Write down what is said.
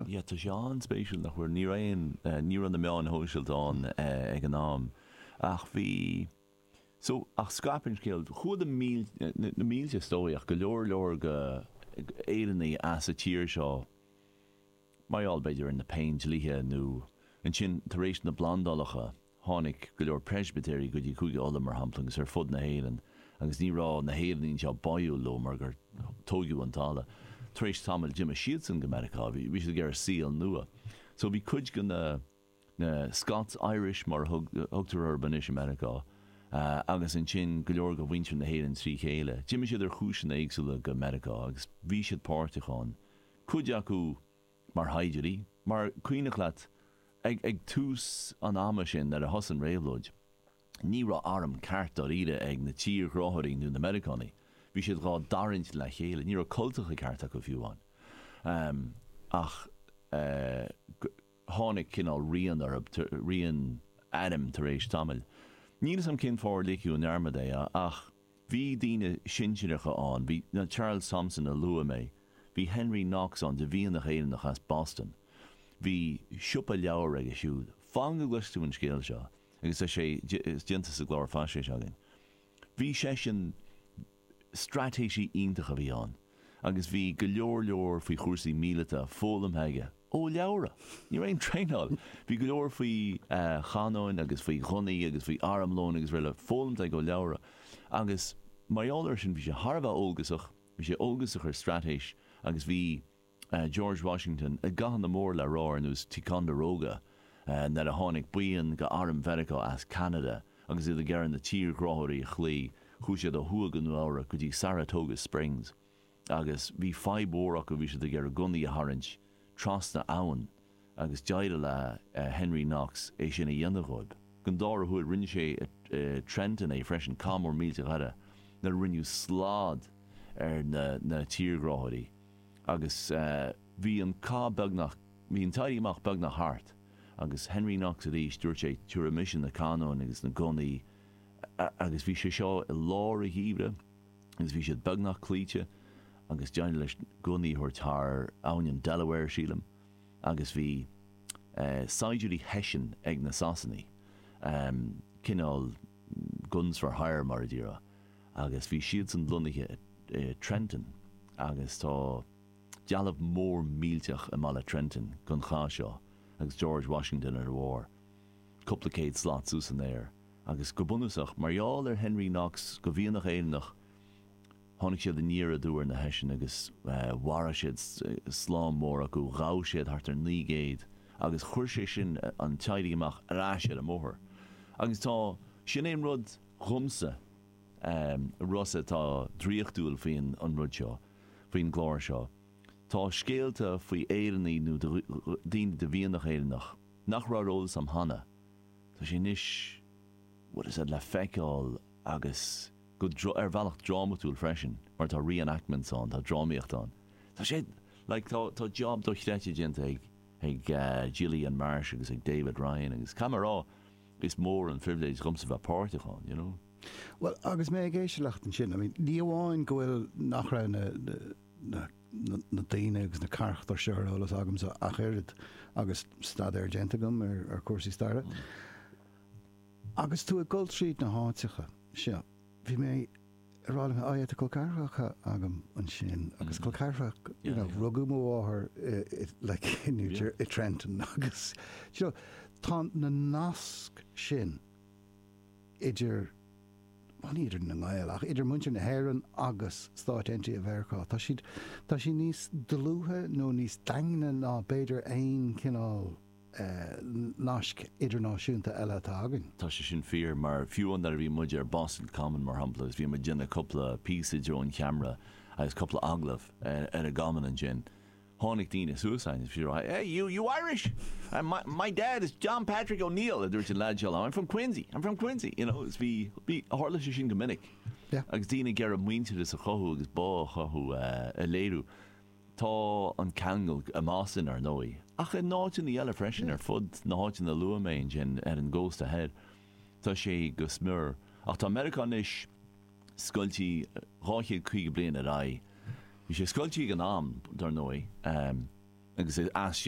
Yeah tá sé an-spéisiúil nach bhfuair, ní raibh aon, ní raibh na meáin shóisialta ann ag an am ach bhí, so, ach scaip an scéal, chuaigh na mílte, na mílte is dóigh ach go leor leor go Éireannaigh as a tír seo mar gheall b'fhéidir ar na péindlíthe nó ansin tar éis na bplandálacha, Tháinig go leor Preispitéirigh go dtí Cúige Uladh, mar shampla, agus ar fud na hÉireann, agus ní raibh na hÉireannaigh anseo báúil leo mar gur tóigeadh an talamh. Tar éis tamaill d'imigh siadsan go Meiriceá. Bhí siad ag iarraidh saol nua. So bhí cuid go na na Scots Irish, mar a thugtar orthu anois, i Meiriceá, agus ansin go leor go mhuintir na hÉireann trí chéile. D'imigh siad ar chúiseanna éagsúla go Meiriceá agus bhí siad páirteach ann. Cuid acu. mar shaighdiúirí, mar cuimhneach leat ag ag tús an ama sin ar thosaigh an réabhlóid. Ní raibh arm ceart dáiríre ag na tírghráthóirí nó na Meiriceánaigh. Bhí siad dhá dtarraingt le chéile. Ní raibh cultacha ceart acu fiú amháin. Ach tháinig cineál rian orthu, rian airm tar éis tamaill. Níl 'fhios a'm cén fáth ar ligeadh i ndearmad é ach. Bhí daoine sinsireacha ann, bhí Charles Thomson a luaigh mé, bhí Henry Knox ann de mhianach Éireannach as Boston. Bhí siopa leabhar aige siúd. Fan go gcloisfidh tú an scéal seo agus tá sé déanta sa gclár faisnéise againn. Bhí seisean, straitéisí iontach a bhí ann agus bhí go leor leor faoi chúrsaí míleata foghlamtha aige. Ó leabhra. Ní raibh aon traenáil. Bhí go leor faoi chanóin agus faoi ghunnaí agus faoi armlón agus araile foghlamtha aige ó leabhra. Agus mar gheall ar sin bhí sé thar a bheith eolgasach, bhí sé eolgasach ar straitéis agus bhí George Washington i gcathanna mór le rá ar nós Ticonderoga nuair a tháinig buíon go airm Mheiriceá as Ceanada agus iad ag iarraidh na tírghráthóirí a chloí, chuaigh siad ó thuaidh go Nua Eabhrac go dtí Saratoga Springs. Agus bhí fadhb mhór acu, bhí siad ag iarraidh gunnaí a tharraingt trasna abhann agus d'éirigh le Henry Knox é sin a dhéanamh dhóib. Gon dára huair rinne sé i Trenton é freisin, cath mór millteach eile nuair a rinneadh slad ar na tírghráthóirí agus bhí an cath beagnach, bhí an t-éirí amach beagnach thart agus Henry Knox arís dúirt sé tiubhraidh mise na canóin agus na gunnaí agus bhí sé seo i lár an gheimhridh. agus bhí siad beagnach cloíte agus d'éirigh leis gunnaí a thabhairt thar abhainn an Delaware, sílim, agus bhí saighdiúirí Hessian ag na Sasanaigh, cineál guns for hire mar a déarfá, agus bhí siadsan lonnaithe i Trenton agus tá dealbh mór millteach i mbaile Trenton gon chath seo agus George Washington ar a bharr cúpla céad slat suas san aer. agus go bunúsach, mar gheall ar Henry Knox, de mhianach Éireannach, tháinig siad aniar aduaidh ar na Heisigh agus mharaigh siad slám mór acu, ghabh siad thart ar naoi gcéad agus chuir sé sin an t-éirí amach ar ais ar an mbóthar. Agus tá, sin é an rud dhomsa, a Rossa, atá draíochtúil faoin an rud seo, faoin gclár seo, tá scéalta faoi Éireannaigh nó daoine de mhianach Éireannach nach raibh ar eolas a'm cheana, Tá sé anois, bhuel, is é, le feiceáil agus go, ar bhealach drámatúil freisin mar tá re-enactments ann, tá drámaíocht ann. Tá sé, like, tá, tá job dochreidte déanta ag, ag Gillian Marsh agus ag David Ryan agus caithfidh mé a rá, is mór an phribhléid dhomsa bheith páirteach ann, you know. Bhuel, agus mé ag éisteacht leat ansin, I mean, ní amháin go bhfuil, nach raibh na, na, na daoine agus na carachtair seo ar eolas agamsa ach oiread agus staidéar déanta agam ar chúrsaí staire. Agus tú ag dul tríd na háiteacha seo, bhí mé ag rá leat, tá colceathracha agam ansin agus colceathracha, you know, rugadh mo mháthair like in New Jersey, i Trenton agus, you know, tá na naisc sin. idir, bhuel ní idir na nGael, ach idir muintir na hÉireann agus Stáit Aontaithe Mheiriceá, tá siad, tá siad níos dlúithe nó níos daingne ná b'fhéidir aon chineál nasc idirnáisiúnta eile atá againn. Tá sé sin fíor, mar fiú an uair a bhí muid ar Boston Common mar shampla agus bhí muid ag déanamh cúpla píosa i dtreo an cheamara agus cúpla agallamh ar an gCommon ansin, Tháinig daoine suas againn agus bhí siad ag rá, Hey, you, you Irish? My, my dad is John Patrick O'Neill, a dúirt an leaid seo liom, I'm from Quincy, I'm from Quincy, you know, is bhí, bhí, tharla sé sin go minic. Yeah. Agus daoine ag iarraidh muintearas a chothú agus bá a chothú, a léiriú. Tá an ceangal i mBoston, ar ndóigh, ach i n-áiteanna eile freisin ar fud na háiteanna a luaigh mé ansin ar an gcósta thoir, tá sé go smior. Ach tá Meiriceá anois. scoiltí 250 bliain ar aghaidh. Bhí sé scoiltí ag an am, dar ndóigh, agus is as sin.